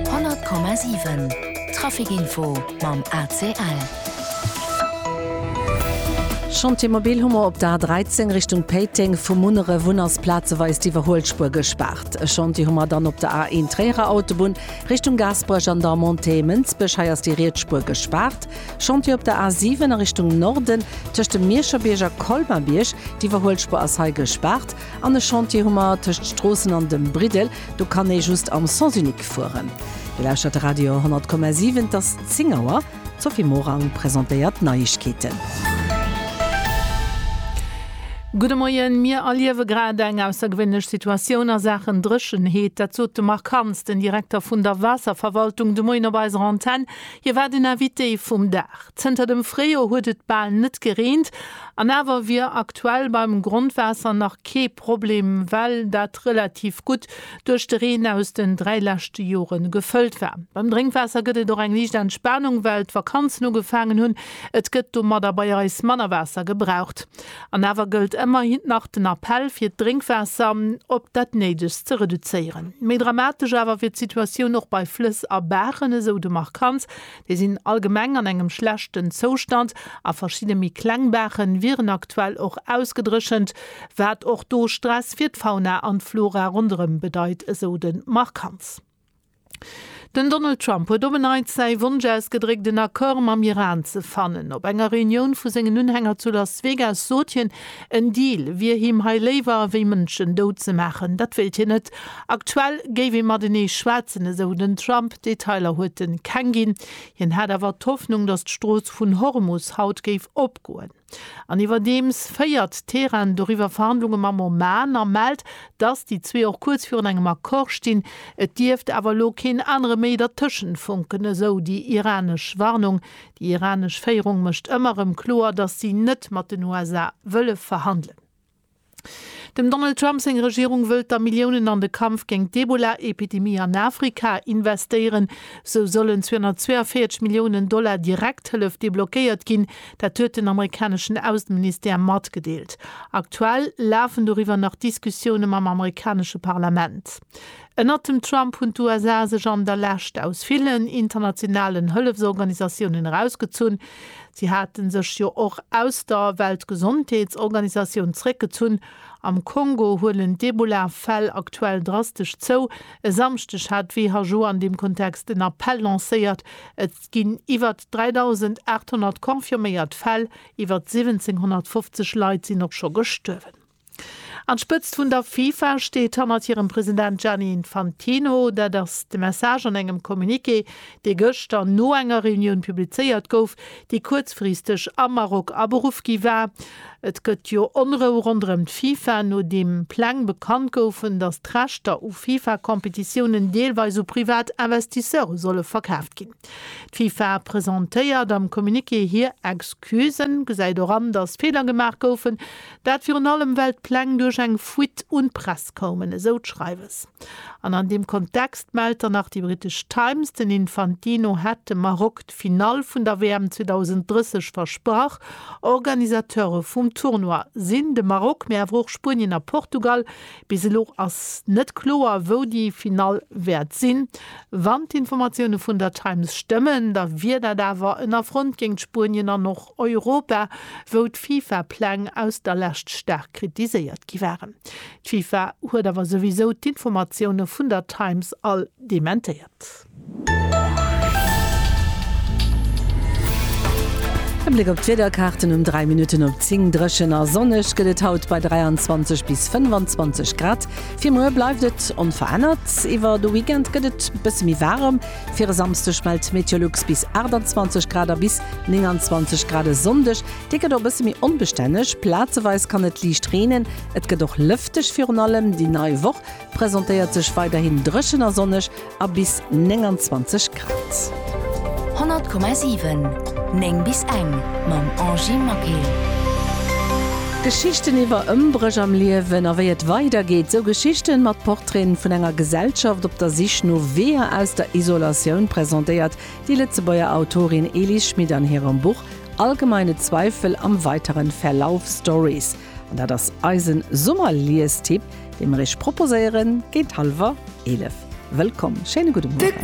100,7 Trafic Info mam ACL. Chantier mobil hu mer op der A13 Richtung Péiteng, vu Munneref un ass plazeweis d'Iwwerhuelspuer gespaart. E Chantier hu mer dann op der A1 Tréierer Autobunn Richtung Gaasperech an der Montée Mënsbech, hei ass déi riets Spuer gespaart. Chantier op der A7 a Richtung Norden tëscht dem Mierscherbierg a Colmabierg, d'Iwwerhuelspuer ass hei gespaart. An e Chantier hu mer tëscht Stroossen an dem Briddel, do kann ee just am Sens unique fueren. Dir lauschtert de Radio 100,7, et ass 10 Auer. D'Sophie Morang presentéiert d'Neiegkeeten. Gudde Moien, Mir erliewe grad eng aussergewéinlech Situatioun a Saachen Dréchenheet. Dat sot de Marc Hans, den Direkter vun der Waasserverwaltung, de Moien op eiser Antenn. Hie war den Invité vum Dag. Zënter dem Fréijoer huet et bal net gereent. An awer wier aktuell beim Grondwaasser nach kee Problem, well dat relativ gutt duerch de Reen aus den dräi leschte Jore gefëllt war. Beim Drénkwaasser gëtt et och eng liicht Entspanung, well d'Vakanzen ugefaangen hunn. Et gëtt domadder bei eis manner Waasser gebraucht. An awer gëllt ëmmerhin nach den Appell, fir d'Drénkwaasser op dat Néidegst ze reduzéieren. Méi dramatesch awer wier d'Situatioun och bei Flëss a Baachen, esou de Marc Kantz. Déi sinn allgemeng an engem schlechten Zoustand a verschidde méi kleng Baache wieren aktuell och ausgedréchent, wat och do Stress fir d'Fauna an d'Flora ronderëm bedeit, esou de Marc Hantz. Den Donald Trump huet op en Neits säi Wonsch ausgedréckt, en Accord mam Iran ze fannen. Op enger Reunioun vu sengen Unhänger zu Las Vegas sot hien, En Deal wier him hei léiwer, wéi Mënschen dout ze maachen. Dat wéilt hien net. Aktuell géif ee matenee schwätzen, esou den Trump. Detailer huet e keng ginn. Hien hätt awer d'Hoffnung, datt d'Strooss vun Hormus haut géif opgoen. An iwwerdeems féiert Teheran doriwwer Verhandlunge mam Oman a mellt, datt déi zwee och kuerz virun engem Accord stinn. Et dierft awer elo keen anere méi dertëschent funken, esou déi iranesch Warnung, Déi iranesch Féierung mécht ëmmer erëm kloer, datt si net mat den USA wëlle verhandelen. Dem Donald Trump seng Regierung wëllt da Milliounen an de Kampf géint d'Ebola-Epidemie an Afrika investéieren. Sou sollen 242 Milliounen Dollar Direkthëllef deblockéiert ginn. Dat huet den amerikaneschen Ausseministère matgedeelt. Aktuell lafen doriwwer nach Diskussioune mam amerikanesche Parlament. Ënnert dem Trump hunn d'USA sech an der Lescht aus villen internationalen Hëllefsorganisatiounen erausgezunn. Si hate sech jo och aus der Weltgesondheetsorganisatioun zeréckgezunn. Am Kongo huelen d'Ebola-Fäll aktuell drastesch zou. E Samschdeg hat d'WHO an deem Kontext en Appell lancéiert. Et ginn iwwer 3.800 confirméiert Fäll, iwwer 1.750 Leit sinn och scho gestuerwen. An d'Spëtzt vun der FIFA steet hannert hirem President Gianni Infantino. Dat ass de Message an engem Communiqué, dee gëschter no enger Reunioun publizéiert gouf, déi kuerzfristeg am Maroc aberuff gi war. Et gëtt jo Onrou ronderëm d'FIFA, nodeem Pläng bekannt goufen, datt d'Rechter u FIFA-Competitiounen deelweis u privat Investisseure solle verkaaft ginn. D'FIFA presentéiert am Communiqué hir Excusen, gesäit och an, datt Feeler gemaach goufen, Dat virun allem, well d'Pläng duerch eng Fuite un d'Press koumen, esou d'Schreiwes. An an deem Kontext mellt dann nach déi brittesch Times, den Infantino hätt dem Maroc d'Finall vun der WM 2030 versprach. Organisateure vum Tournoi sinn de Maroc, mee awer och Spuenien a Portugal, Bis elo ass net kloer, wou déi Finall wäert sinn. Wann d'Informatioune vun der Times stëmmen, da wier dat awer en Affront géint Spuenien an och Europa, wou d'FIFA-Pläng aus der Lescht staark kritiséiert gi waren. D'FIFA huet awer souwisou d'Informatioune vun der Times all dementéiert. E Bléck op d'Wiederkaarten um 3 Minutten op 10, Dréchen a sonneg gëtt et haut bei 23 bis 25 Grad. Fir muer bleift et onverännert. Iwwer de Weekend gëtt et bësse méi waarem. Fir e Samsdeg mellt Meteolux bis 28 Grad a bis 29 Grad e Sonndeg. Dee gëtt och e bësse méi onbestänneg, plazeweis kann et liicht reenen. Et gëtt och lëfteg. Virun allem déi nei Woch presentéiert sech weiderhin dréchen a sonneg. a bis 29 Grad. 100,7 9 bis eng mam Angie Maquet. Geschichten iwwer Ëmbréch am Liewen a wéi et weider geet. Esou Geschichten mat Portraiten vun enger Gesellschaft op der Sich no Weeër aus der Isolatioun presentéiert déi Lëtzebuerger Autorin Elis Schmit an hirem Buch Allgemeine Zweifel am weiteren Verlauf Stories. An dat ass eisen Summerliestipp, dee mer iech proposéieren géint halwer 11. Wëllkomm, schéine gudde Mueren.